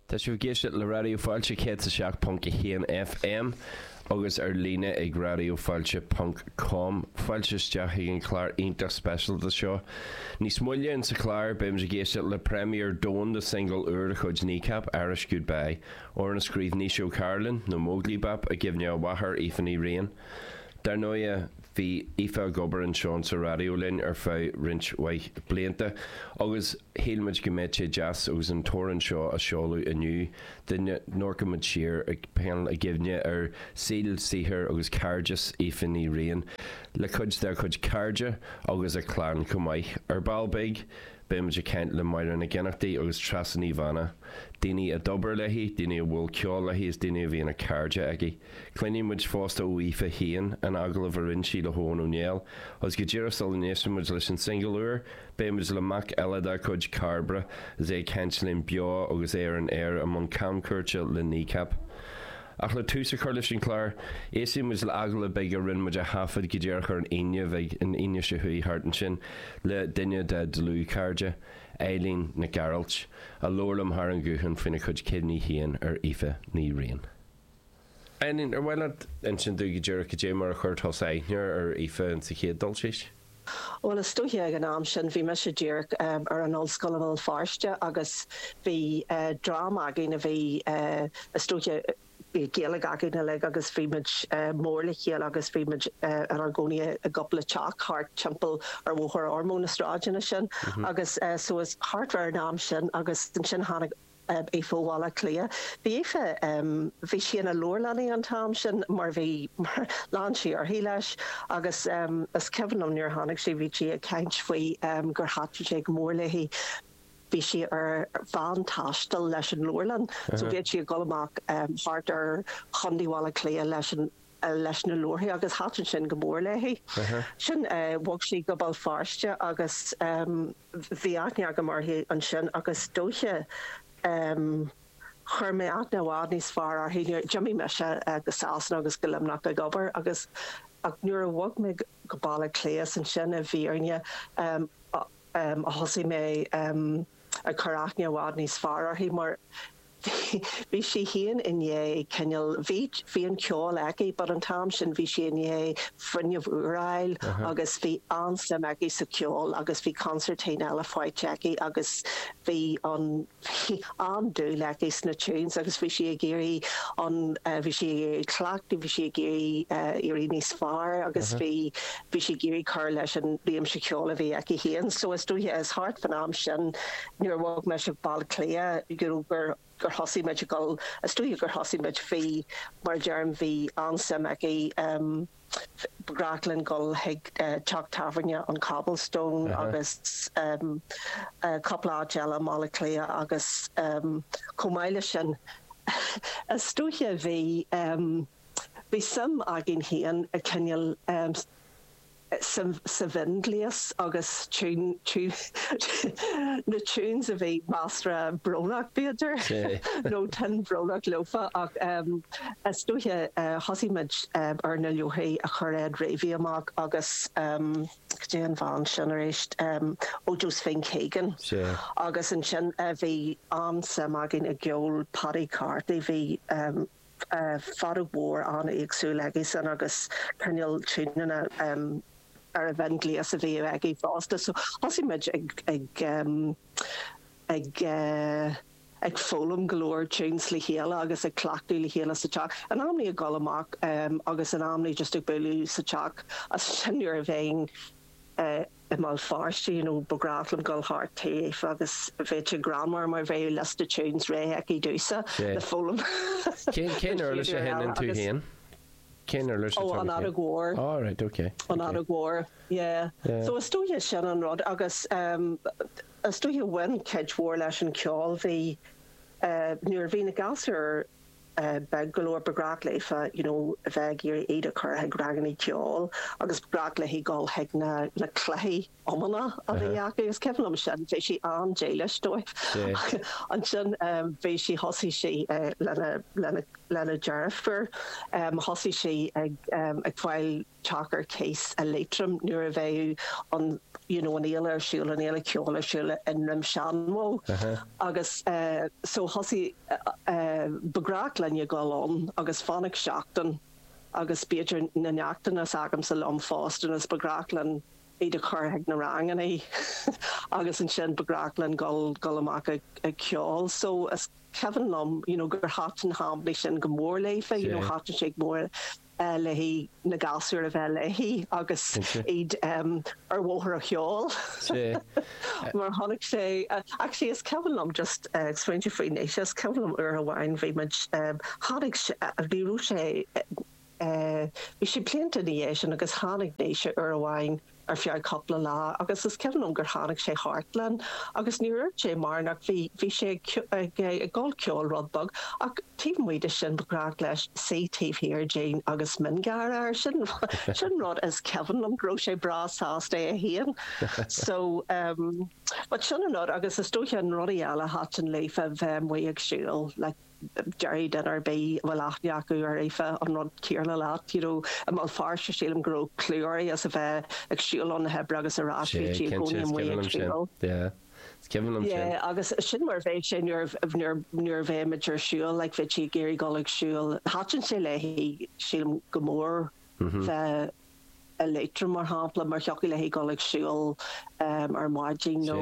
Tá sibh ag éisteacht le Raidió Fáilte 107.1 FM agus ar líne ag radiofailte ponc com. Fáilte isteach chuig an chlár iontach speisialta seo. Níos moille in sa chlár, beimid ag éisteacht le premiere domhanda de shingil úr de chuid Kneecap, Irish Goodbye, amhrán a scríobh Naoise Ó Cairealláin, nó Móglaí Bap, i gcuimhne a mháthar, Aoife Ní Riain. Dar ndóighe. Bhí Aoife ag obair anseo in sa raidió linn ar feadh roinnt mhaith blianta agus shíl muid go mbeadh sé deas agus an t-amhrán seo á seoladh inniu dá n-amharcfadh muid siar agus pilleadh i gcuimhne ar shaol, saothar agus cairdeas Aoife Ní Riain le cuid dá cuid cairde agus a clann chomh maith. Ar ball beag beidh muid ag caint le Máire Nic Ionnachtaigh agus Treasa Ní Bheanna, daoine a d'obair léi, daoine a bhuail ceol léi is daoine a bhí ina gcairde aici. Cluinfidh muid fosta ó Aoife féin in agallamh a rinn sí le hEoghan Ó Néill. Agus go díreach sula n-éistfidh muid leis an singil úr, beidh muid le mac eile dá cuid, Cairbre, is é ag caint linn beo agus é ar an Eoraip i mbun camchuairte le Kneecap. Ach le tús a chur leis an chlár, éistfidh muid le hagallamh beag a rinn muid a thaifeadadh go díreach ar an Aoine a chuaigh, an Aoine seo a chuaigh thart ansin, le duine dá dlúthchairde, Eilín Nic Ghearailt, a labhair liom thar an ghuthán faoina cuid cuimhní féin ar Aoife Ní Riain. Ainnín, Ar mhaith leat insint dúinn go díreach goidé mar a chuir tusa aithne ar Aoife insa chéad dul síos? Bhuel, is dóiche ag an am sin bhí mise díreach ar an ollscoil i mBéal Feirste agus bhí dream againn a bhí is dóiche, bhí Gaeilge againn uilig agus bhí muid mór le chéile agus bhí muid inár gcónaí i gcúpla teach thart timpeall ar Bhóthar Ormeau, na sráideanna sin agus so thart fá an am sin agus ansin tháinig, Aoife ó Bhaile Átha Cliath. Bhí Aoife, bhí sí ina leabharlannaí an t-am sin mar bhí, mar lean sí uirthi leis agus is cuimhin liom nuair a tháinig sí bhí sí ag caint faoi gur thaitin sé go mór léi, bhí sí ar veain taistil leis an leabharlann so bhíodh sí ag dul amach thart ar chontae Bhaile Átha Cliath leis an leis na leabharthaí agus thaitin sin go mór léi. Sin, bhog sí go Béal Feirste agus bhí aithne agam uirthi ansin agus is dóiche chuir mé aithne i bhfad níos fearr uirthi nuair, d'imigh mise go Sasana agus go Luimneach ag obair agus ach nuair a bhog mé go Baile Átha Cliath is ansin i bhfírinne a thosaigh mé ag cur aithne i bhfad níos fearr uirthi mar Bhí sí féin i ndiaidh cineál, bhí, bhí an ceol aici but an t-am sin bhí sí i ndiaidh fuinneamh úr a fháil agus bhí an-suim aici sa cheol agus bhí concertina eile faighte aici agus bhí an, bhí an-dúil aici sna tunes agus bhí sí ag iarraidh an, bhí sí ag iarraidh cleachtadh, bhí sí ag iarraidh éirí níos fearr agus bhí, bhí sí ag iarraidh cur leis an réimse ceoil a bhí aici féin so is dóiche, is thart fán am sin. nuair a bhog muid go Baile Átha Cliath you know gur gur thosaigh muid a dhul is dóiche gur thosaigh muid bhí mar a deirim bhí an-suim aici ehm ba ghnách linn dhul chuig eh teach tábhairne an Cobblestone Uh-huh. agus ehm eh cúpla áit eile i mBaile Átha Cliath agus ehm chomh maith leis sin is dóiche a bhí ehm bhí suim againn féin i cineál ehm sa mhionghléas agus na tunes a bhí measartha brónach b'fhéidir nó tuin bhrónach leofa ach is dóiche thosaigh muid ar na leabharthaí a chuir Ed Reavy amach agus cad é an bhean sin arís ó Josephine Keegan agus ansin bhí an-suim againn i gceol Paddy Carty bhí feadóg mhór an-éagsúil aigesan agus cineál tiúineanna ar an mhionghléas a bhíodh aige fosta so thosaigh muid ag ag ag ag foghlaim go leor tunes le chéile agus ag cleachtadh le chéile sa teach in amannaí ag dul amach agus in amannaí just ag bualadh sa teach as sin nuair a bheinn i mBéal Feirste you know ba ghnách liom goil thart taobh agus bheadh sé greannmhar mar bheadh liosta tunes réidh aici domhsa le foghlaim Cén uirlis a sheinneann tú féin? Cén uirlis atá agat féin? Ó an fheadóg mhór. Ó right ok. An fheadóg mhór yeah. So is dóiche sin an rud agus em is dóiche bhain cuid mhór leis an ceol bhí eh nuair bhí na gasúir beag go leor ba ghnách léi you know a bheith ag iarraidh iad a chur chuig rangannaí ceoil agus ba ghnách léi dhul chuig na cluichí iomána a bhí acu. Is cuimhin liom sin. Bheadh sí an-dílis dóibh. Ansin bhí sí, thosaigh sí lena deirfiúr, thosaigh sí ag fáil teach ar cíos i Liatroim nuair a bheadh an you know an fhéile ar siúl, an fhéile cheoil ar siúl i nDroim Seanbhó agus eh so thosaigh eh ba ghnách linn a dhul ann agus fanacht seachtain agus b'fhéidir na neachtanna s'agamsa liom fosta is ba ghnách linn iad a chur chuig na rangannaí agus ansin ba ghnách linn dhul dhul amach ag ag ceol so is cuimhin liom you know gur thaitin na hamannaí sin go mór léi you know thaitin sé go mór léi, na gasúir a bheith léi agus iad ar bhóthar an cheoil. Mar a tháinig sé, actually is cuimhin liom, just ag smaointiú faoi anois, is cuimhin liom uair amháin bhí muid, tháinig sé, bhí, raibh sé, bhí sé blianta ina dhiaidh sin agus tháinig Naoise uair amháin, ar feadh cúpla lá agus is cuimhin liom gur tháinig sé thart linn agus níor fhirt sé mar nach bhí bhí sé ag ag gabháil cheoil rud beag ach taobh amuigh de sin ba ghnách leis suí taobh thiar dínn agus mionghearradh air sin sin an rud is cuimhin liom go raibh sé breá sásta é a haon so but sin an rud agus is dóiche na rudaí eile thaitin léi ná bheith amuigh ag siúl like déarfaidh duine ar bith a bhfuil aithne acu ar Aoife an rud céanna leat, you know, i mBéal Feirste sílim go raibh clú uirthi as a bheith ag siúl óna hoibre agus ar ais, bhí sí i gcónaí amuigh ag siúl. Yeah agus sin mar a bheidh sé nuair, nuair, nuair a bheimid ar siúl, like bheadh sí ag iarraidh dul ag siúl, thaitin sé léi sílim go mór bheith, i Liatroim mar shampla mar thiocfadh léi dul ag siúl ar maidin nó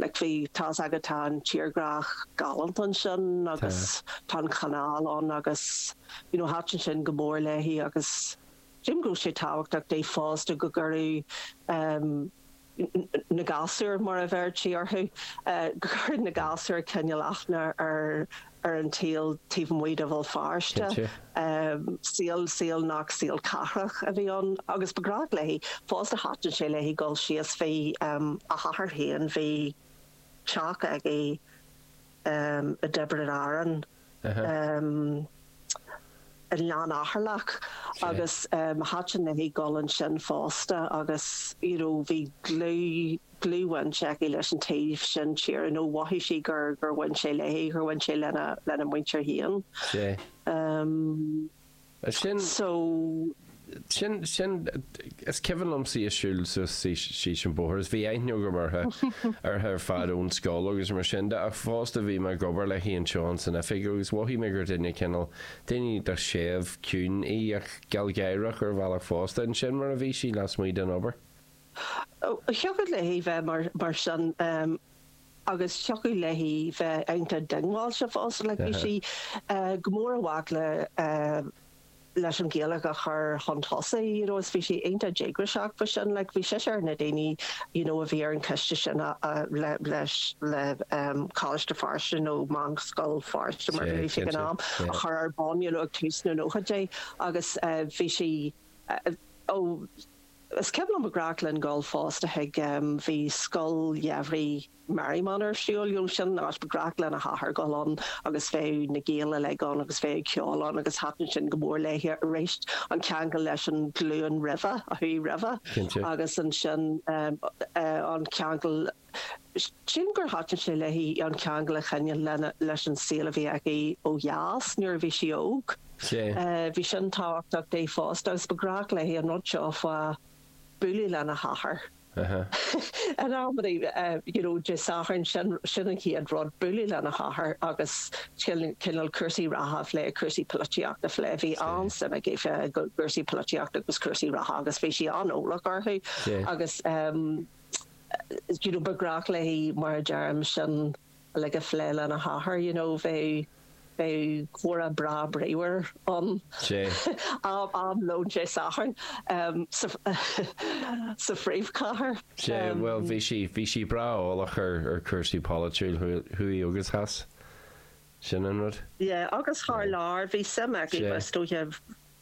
like tá's agat tá an tírdhreach galánta ansin agus tá an canal ann agus you know thaitin sin go mór léi agus déarfainn go raibh sé tábhachtach di fosta go gcuirfeadh na gasúir, mar a bheirtí orthu, go gcuirfeadh na gasúir cineál aithne ar an tsaol taobh amuigh de Bhéal Feirste. Saol nach saol cathrach a bhí ann agus ba ghnách léi fosta, thaitin sé léi dul síos. Bhí a hathair féin, bhí teach aige, um i dTiobraid Árann um i nGleann Eatharlach agus um thaitin léi dul ansin fosta agus you know bhí dlúth dlúthbhaint aici leis an taobh sin tíre nó mhothaigh sé gur gur bhain sé léi gur bhain sé lena lena muintir féin. Um. Is sin, So. sin, sin, is cuimhin liom sí ag siúl suas síos an bóthar is bhí aithne agam uirthe, uirthe ar fad ón scoil agus mar sin de ach fosta bhí mé ag obair léi anseo ins an oifig agus mhothaigh mé gur duine cineál, duine séimh, ciúin í ach gealgháireach ar bhealach fosta and sin mar a bhí sí lasmuigh den obair. Thiocfadh léi bheith mar, mar sin. agus thiocfadh léi bheith iontach diongbháilte fosta. Like bhí sí go mór i bhfách le leis an Ghaeilge a chur chun tosaigh you know is bhí sí iontach díograiseach faoi sin. Like bhí sise ar na daoine you know a bhí ar an coiste sin a a le leis le Coláiste Feirste nó Meánscoil Feirste mar a bhí sé ag an am a chur ar bun you know ag tús na nóchaidí agus bhí sí ó Is cuimhin liom ba ghnách linn dhul fosta chuig, bhí scoil gheimhridh Merriman ar siúl, you know sin an áit, ba ghnách lena hathair dhul ann agus bheadh na Gaeil uilig ann agus bheadh ceol ann agus thaitin sin go mór léi arís, an ceangal leis an ghlúin roimhe, a chuaigh roimhe. Cinnte. Agus ansin an ceangal. sin gur thaitin sé léi an ceangal a choinneáil leis an saol a bhí aici ó dheas nuair a bhí sí óg. Bhí sin tábhachtach di fosta agus ba ghnách léi an rud seo fá bhualadh lena hathair in amannaí, you know Dé Sathairn, sin an chéad rud, bualadh lena hathair agus cineál cúrsaí reatha a phlé, cúrsaí polaitíochta a phlé. Bhí an-suim aici i gcúrsaí polaitíochta agus cúrsaí reatha agus bhí sí an-eolach orthu agus, you know ba ghnách léi mar a déarfá sin uilig a phlé lena hathair you know bheadh bheadh comhrá breá bríomhar ag am lóin Dé Sathairn sa sa phríomhchathair. Sea bhuel bhí sí bhí sí breá eolach ar ar chúrsaí polaitiúla thuaidh agus theas sin an rud. Yeah agus thar lear bhí suim aici fosta a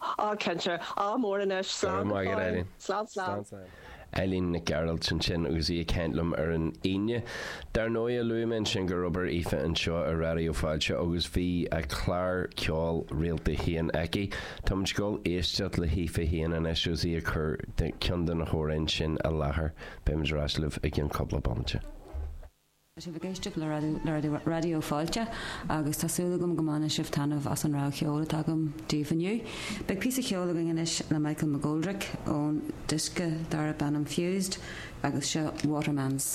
Ááá, cinnte. Ádh mór anois. Go raibh Slán go maith agat, fóill. Eileen. Slán, slán. Slán, slán. Eileen Nic Gearailt, ansin agus í ag caint liom ar an Aoine. Dar ndóigh, luaigh mé ansin gur oibir Aoife anseo i Raidió Fáilte agus bhí a clár ceoil rialta féin aici. Táimid ag dul a éisteacht le hAoife féin anois agus í ag cur ceann de na hamhráin sin i láthair. Beimid ar ais libh i gceann cúpla bomaite. Tá sibh ag éisteacht le Raidió Fáilte agus tá súil agam go mbaineann sibh taitneamh as an rogha cheoil atá agam daoibh inniu. Beidh píosa ceoil againn anois le Michael McGoldrick ón diosca darb ainm Fused agus seo Waterman's.